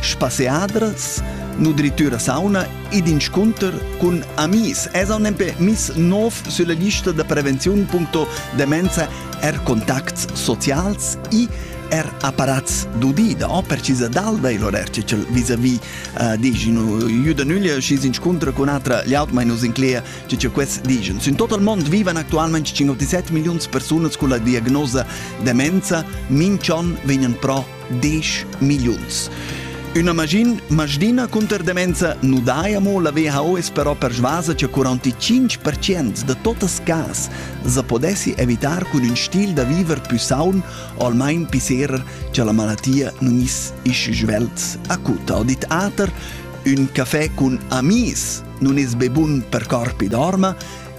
spasseadras, nutritura sauna ed inscunter cun amis. Es on empè miss nov sulla lista da prevenziun.demenza er contacts socials e er apparats d'udida, o precisa d'alda il horer cel vis-a-vis uh, diginu juda nüglia schis inscuntra con atra liaut mai nus inclea ce ce quest digen. In total mond vivan actualmente 57 milions personas con la diagnosa demenza, minchon vegnan pro 10 milliuns. Üna magin, maschdina cunter demenza nu dai amo la WHO es però persvasa cha 45% da totas cas sa podessi evitar cun ün stil da viver pü saun o almain pisserer cha la malatia nun is isch svelt acuta. Ho dit Ater, ün cafè cun amis nun es be bun per corpi d'orma